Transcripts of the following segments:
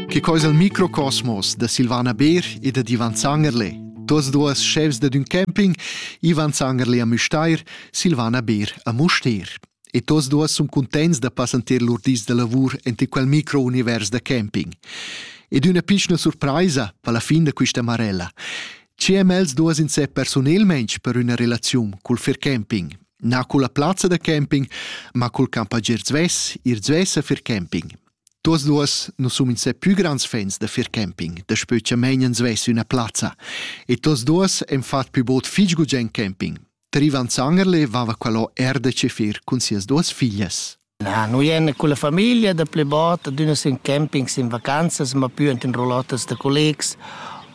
Che coisa il microcosmos da Silvana Beer e da Ivan Zangerle. Tuas duas chefs da dun camping, Ivan Zangerle a Müstair, Silvana Beer a Mustair. E tuas duas sun contents da passanter lur dis da lavur ente quel micro-univers da camping. Ed üna pichna surpraisa per la fin da quista marella. Ci MLs duas in se personelmensch per üna relaziun cul fer camping, Na culla plazza da camping, ma cul campagier zvess, ir zvess a fir camping. Tuos duos nu sun insè pü grands fans da fir camping, daspö cha meinen zvess üna plazza. E tuos duos han fat pü bod fich gugent camping. Trivan Zangerle vava qualò er da ce fir cun sias duos figlias. Na, nu ien culla famiglia da plü bod, adüna sün campings, in vacanzas, ma pü ant in roulottes da collegs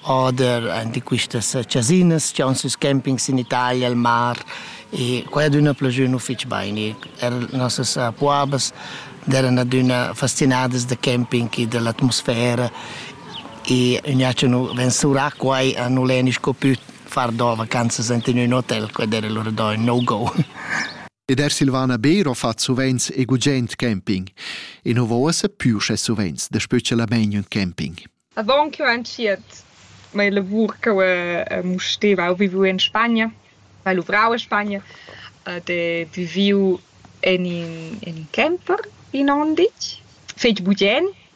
oder ant in quistas chasinas chi haun süs campings in Italia, al mar e quai adüna plajü nu fich bain. Er nossas puabas d'eiran adüna fastinadas da camping e da l'atmosfera e gnà cha nu ven surà quai a nu l'he sco pü far do vacanzas ant in ün hotel, quai d'eira lura do ün no-go. Ed er Silvana Beero fa suvent e gugent camping. E nu vosa più sche suvent da specialament un camping. Avant che ho entschiet mia lavur che ho eh, musteva, ho viviu in Spagna, ho luvrau in Spagna ed ho viviu in in, in camper in Ondic, fetg bugen,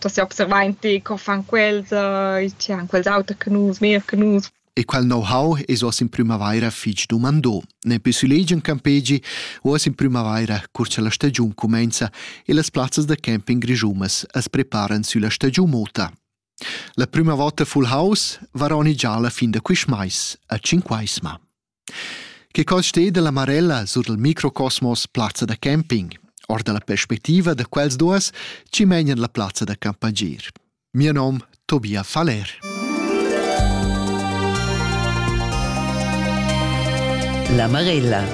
da seobservar in ti co fan quels, uh, tgi han quels auter che nus, meglier che nus. E quel know-how es oss in prümavaira fich dumandò. Ne pü sulegi in campegi, oss in prümavaira, cur cha la stagiun cumainza e las plazzas da camping grischumas as preparan sülla stagiun mota. La prüma vota full house varoni già la fin da quist mais, a Cinquaisma. Che cos steda la Marella sur il microcosmos plazza da camping, or dalla perspectiva da quels duas chi menan la plazza da campagir. Mio nom Tobia Faller. La Marella.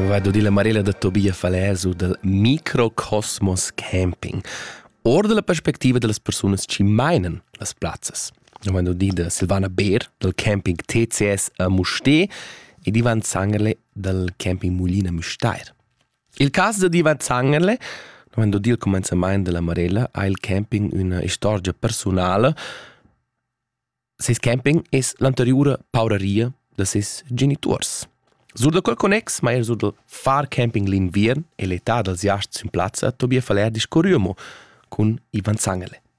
Vado di la Marella da Tobia Faller su dal microcosmos camping, or dalla perspectiva dellas persunas chi meinen las plazzas. omadudida Silvana Beer dal camping TCS a Mustér ed Ivan Zangerle dal camping Mulina Müstair. Il cas da Ivan Zangerle Quando il commenzamento della Marella ha il camping una storia personale. Ses camping es l'anteriore pauraria de ses genitors. Sur da quel connex mai sur del far camping l'inviern e l'età dels jasts in plazza Tobias Valer discorriamo con Ivan Zangele.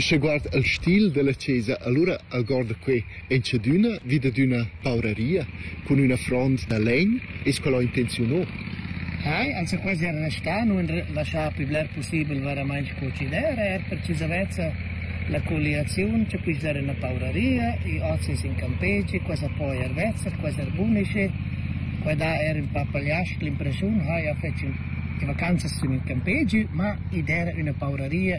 Sche guard el stil dalla chesa allura algorda quei entschadüna vi dad üna pauraria cun üna front da legn es quel ho intenziunà. Hai, anzi quasi era restà, nun laschà pli bler possibel veramainch co chi d'era, er per chi zavezza la colliaziun, che quist era una pauraria, i ozis in campeci, quasi poi ervezza, quasi erbunisce, qua da era un po' pagliasc l'impressiun, hai, ha fetg in vacanzas in campegi, ma id era una pauraria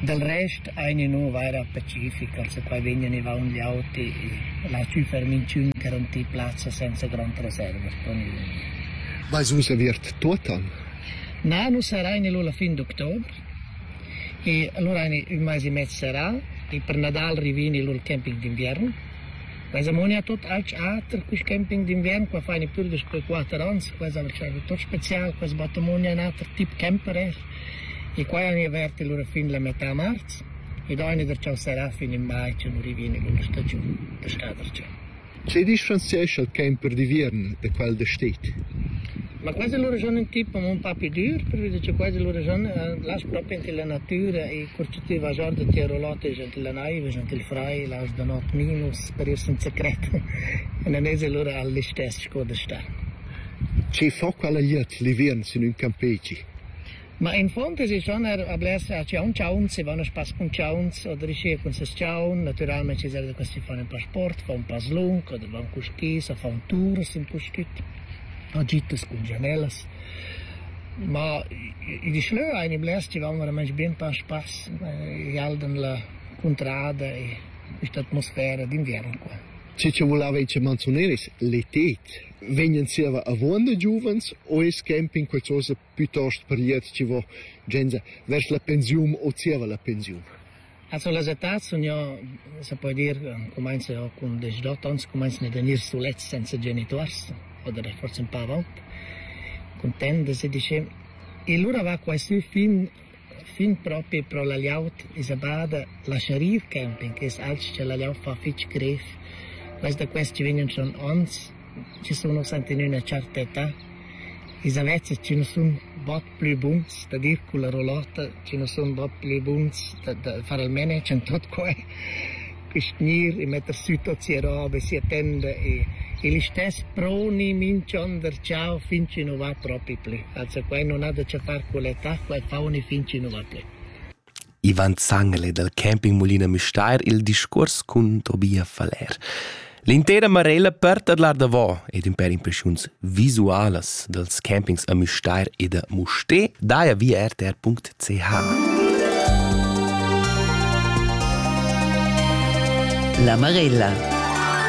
Dal rest eina nu vaira pacifica, perquai vegnan i vaun gli auti la superminchün che ron tii plazza senza grond reservas pro nus. Vais vus aviert tuot an? Na, nu sarain lura fin d'october. E allura eina ün mais e mez sarà e per Nadal rivini lur camping d'inviern. Quai zamoni a tot alch ater quist camping d'inviern, qua faini pür daspö quatter ans, quai s'ha lascià tot special, quai sbattamoni a un ater tip camper er. E quai han avert lura fin la metà marz ed aina der cha'l serà fin in mai cha nu rivini lura stagiun da schadarcha. Che differenziescha quai per d'viern da quel da stet? Ma quasi lura schon un tip un pa più dur, perché che quasi lura schon las proprio ante la natura e corcitiva già da tirolate ante la naiva, ante il frai, las da not minus per ir senza cret. E non es lura all'istess sco da sta. Che fa quella gliet l'ivern sin un campeci? Ma infund es i schon er a blers chaunchauns, i van a spass cun chauns o dricir cun ses chaun. Natüralmaing chi serva da quist chi fan ün pasport, fa ün paslung oder van cul skis a fa ün tour sin quist güt. Agitas cun gianellas. Ma i di schlö aini blers chi van veramaing bin pa a spass. I aldan la cuntrada e quist'atmosfera d'inviern qua. Che cha vulava i manzuneris, l'eted. vegnan zieva avon da giuvens o es camping qualchosa piuttost priet chi vo genza vers la pensiun o zieva la pensiun? Also las etats sun ja, se po dir, comenza ja cun 18 ans, comenzan ad venir sulets senza genituors oder forse un pa avalt, content de se dice. E lura va quai sü fin Fin propi pro la glieud esa bada la Sharif Camping es alch cha la glieud fa fich grev. Quels da quest chi vegnan son ons, chi sun ussa ant in üna tscherta età, ils avezs chi nu sun bod plü buns da dir culla rolota, chi nu sun bod plü buns da da far almeno, ch'han tuot quai. che gnir e metter sü tot sia roba, sia tenda e, e l'istess proni minch'on der ciao fin chi nu va propi plü. Also quai non ha da che far con l'età, quai fauni fin chi nu va plü. Ivan Zangele dal campingmulina Müstair il discuors cun Tobia Faller. L'intera Marella per tadlar davò ed in per impressiuns visualas dals campings a Müstair e da Mustér daja via rtr.ch. La Marella